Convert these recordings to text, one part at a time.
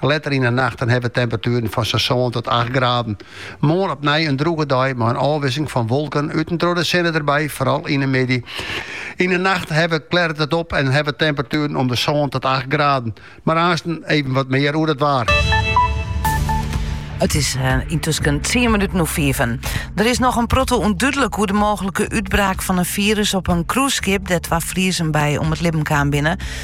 Letter yn 'e nacht dan ha we temperatueren fan sa'n sân tot acht graden. Moarn opnij in drûge dei mei in ôfwisseling fan wolken út en troch de sinne derby, foaral yn 'e middei. Yn 'e nacht ha we klearet it op en ha we temperatueren om de sân tot acht graden. Mar aansten even wat mear oer it waar. It is eh, yntusken tsien minuten oer fiven. Der is noch in protte ûndúdlik oer de mooglike útbraak fan in firus op in cruiseskip dêr't twa Friezen by om it libben kaam binne.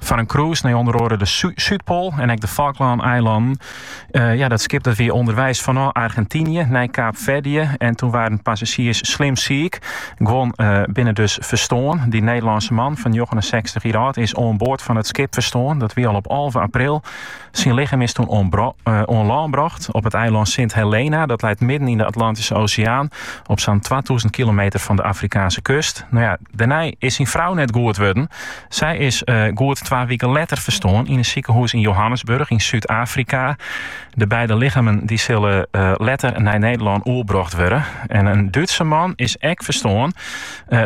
Foar in cruise nei ûnder oare de Súdpoal en ek de Falklâneilannen. ja, dat skip dat wie ûnderweis fanôf Argentynje nei Kaapferdje en toen waarden passazjiers slim siik. Guon binne dus ferstoarn. Dy Nederlânske man fan 69 jier âld is oan board fan it skip ferstoarn. Dat wie al op alve april. Syn lichem is toen oan lân brocht op it eilân Sint Helena. Dat leit midden yn de Atlantyske Oseaan op sa'n twatûzen kilometer fan de Afrikaanske kust. No ja, dêrnei is syn frou net goed wurden. Sy is goed twa wiken letter ferstoarn yn in sikehûs yn Johannesburg yn Súd-Afrika. De beide lichammen dy sille letter nei Nederlân oerbrocht wurde. En in Dútske man is ek ferstoarn.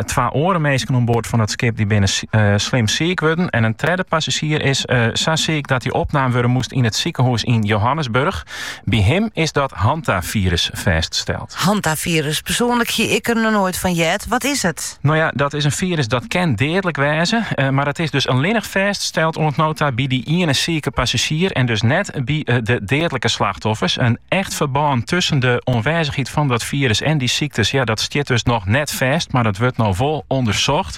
Twa oare minsken oan board fan it skip dy binne slim siik wurden en in tredde passazjier is sa siik dat dy opnaam wurde moast yn it sikehûs yn Johannesburg. By him is dat hantafirus fêststeld. Hantafirus, persoanlik hie ik der noch noait fan heard. Wat is it? No ja, dat is in firus dat kin deadlik wêze, mar it is dus allinnich fêststeld oant no ta by dy iene sike passazjier en dus net by de deadlike slachtoffers. In echt ferbân tusken de oanwêzichheid fan dat firus en dy syktes, ja, dat stiet dus noch net fêst, mar it wurdt no wol ûndersocht.